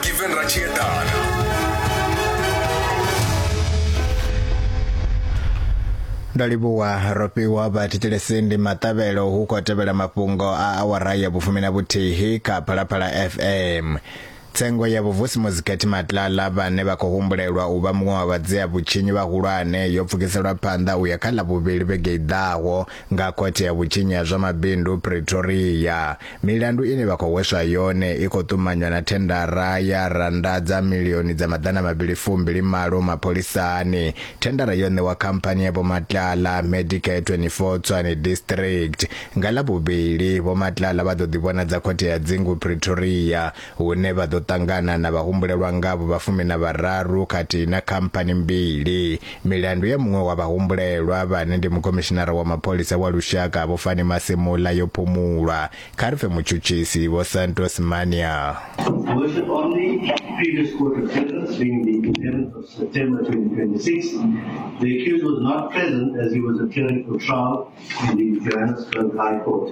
given ra tshi eḓana ndo livhuwa ro fhiwa vhathetshelesi ndi maṱavhelo hu khou tevhela mafhungo a awara ya vhufumi na vhuthihi kha phalaphala fm tsengo ya vhuvusi muzikhethi matlala vhane vha khou humbulelwa u vha muṅwe wa vhadzea vhutshinyi vhahulwane yo pfukiselwa phanḓa u ya kha ḽa vhuvhili vhege i ḓaho Nga Khothe ya Vhutshinyi ha zwa Mabindu Pretoria, milandu ine vha khou hweswa yone i khou ṱumanywa na thendara ya rannda dza milioni dza maḓana mavhili fu mbili malo mapholisani. Thendara yo ṋewa khamphani ya Vho Matlala, Medicare 24 Tshwane District. Nga Ḽavhuvhili, Vho Matlala vha ḓo ḓivhonadza Khothe ya Dzingu Pretoria hune vha ḓo ṱangana na vhahumbulelwa ngavho vha fumi na vhararu khathihi na khamphani mbili. Milandu ya muṅwe wa vhahumbulelwa vhane ndi mukomishinara wa mapholisa wa lushaka Vho Fani Masemola yo phumulwa, kha ri pfe mutshutshisi Vho Santos Mania. Version on the previous court of sentence being the 11th of September 2026, the accused was not present as he was appearing for trial in the Johannesburg High Court.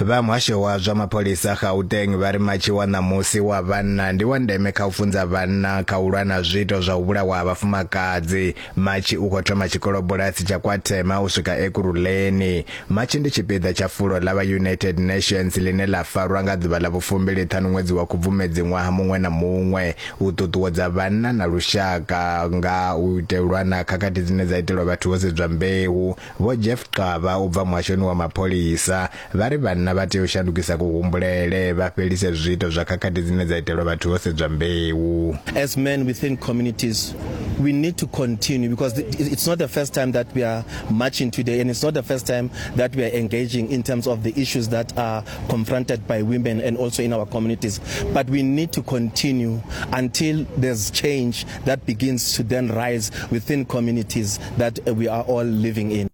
Vha muhasho wa zwa mapholisa Gauteng vha ri matshi wa ṋamusi wa vhanna ndi wa ndeme kha u funza vhanna kha u lwa na zwiito zwa u vhulawa ha vhafumakadzi. Matshi u khou thoma tshikolobulasi tsha KwaThema u swika Ekurhuleni. Matshi ndi tshipiḓa tsha fulo ḽa vha United Nations ḽine ḽa farwa nga ḓuvha ḽa vhufumbili ṱhanu ṅwedzi wa Khubvumedzi ṅwaha muṅwe na muṅwe u ṱuṱuwedza vhanna na lushaka nga u itelwa na khakhathi dzine dza itelwa vhathu ho sedzwa mbeu, Vho Jeff Xaba u bva muhashoni wa mapholisa vha ri vhanna vha tea u shandukisa kuhumbulele vha fhelise zwiito zwa khakhathi dzine dza itelwa vhathu ho sedzwa mbeu. As men within communities we need to continue because it's not the first time that we are marching today and it's not the first time that we are engaging in terms of the issues that are confronted by women and also in our communities but we need to continue until there's change that begins to then rise within communities that uh, we are all living in.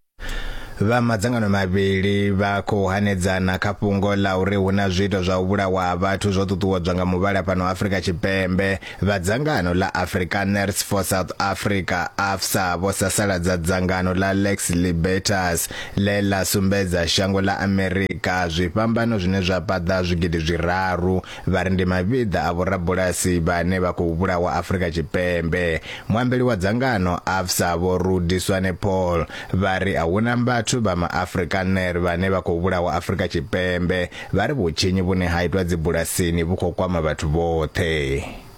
vha madzangano mavhili vha khou hanedzana kha fhungo ḽa uri hu na zwiito zwa u vhulawa ha vhathu zwo ṱuṱuwedzwa nga muvhala fhano Afrika Tshipembe vha dzangano ḽa Afrikaners for South Africa AFSA vho sasaladza dzangano ḽa Lex Libertas ḽe ḽa sumbedza shango ḽa Amerika zwifhambano zwine zwa paḓa zwigidi zwiraru Vha ri ndi mavhiḓa a vhorabulasi vhane vha khou vhulawa Afrika Tshipembe. Muambeli wa dzangano AFSA Vho Rudi Swanepoel vha ri a huna vhathu vha maAfrikaner vhane vha khou vhulawa Afrika Tshipembe, vha ri vhutshinyi vhune ha itwa dzibulasini vhu khou kwama vhathu vhoṱhe.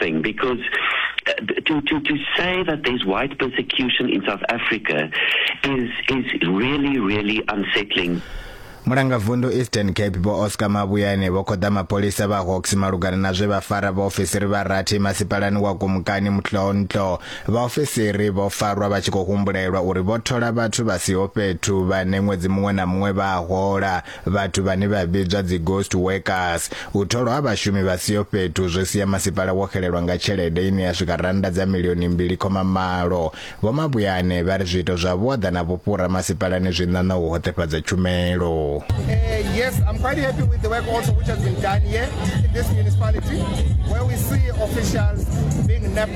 thing because uh, to, to, to say that there's white persecution in South Africa is, is really, really unsettling. mulangavundu eastern cape vho oscar mabuyane vho khoḓa mapholisa vha hawks malugana na zwe vha fara vhaofisiri vha rathi masipalani wa gumukani mutloontlo vhaofisiri vho farwa vha tshi khou humbulelwa uri vho thola vhathu vha siho fhethu vhane ṅwedzi muṅwe na muṅwe vha hola Vhathu vhane vha vhidzwa dzi ghost workers, u tholwa ha vhashumi vha siho fhethu zwo sia masipala wo xelelwa nga tshelede ine ya swika rannda dza milioni mbili khoma malo. Vho Mabuyane vha ri zwiito zwa vhuaḓa na vhufhura masipalani zwi ṋaṋa u hoṱefhadza tshumelo. Uh, yes, I'm quite happy with the work also which has been done here in this municipality where we see officials being napped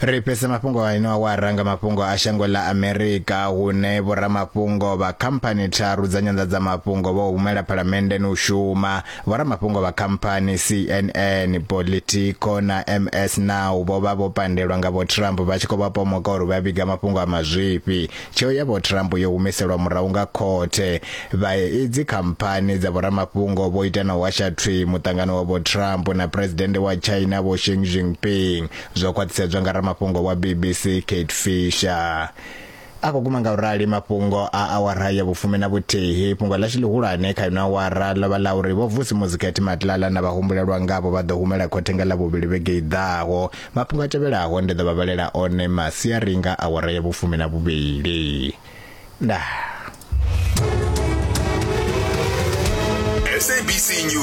ri fhese mafhungo a ino awara nga mafhungo a shango ḽa amerika hune vhoramafhungo vha khamphani tharu dza nyanḓadzamafhungo vho humela phalamenndeni u shuma vhoramafhungo vha khamphani cnn politico na ms now vho vha vho pandelwa nga vho trump vha tshi khou vha pomoka uri vha vhiga mafhungo a mazwifhi Tsheo ya Vho Trump yo humiselwa murahu nga khothe. Vha idzi khamphani dza vhoramafhungo vho ita na u hasha thwi muṱangano wa Vho Trump na Phuresidennde wa China Vho Xi Jinping, zwo khwaṱhisedzwa nga ramafhungo wa BBC Kate Fisher. A khou guma nga u rali mafhungo a awara ya vhufumi na vhuthihi. Fhungo ḽashu ḽihulwane kha ino awara ḽo vha ḽa uri Vho Vusi Muzi Khethi Matlala na vhahumbulelwa ngavho vha ḓo humela khothe nga Ḽavhuvhili vhege i ḓaho Mafhungo a tevhelaho ndi ḓo vha vhalela one masiari nga awara ya vhufumi na vhuvhili. Ndaa. SABC News.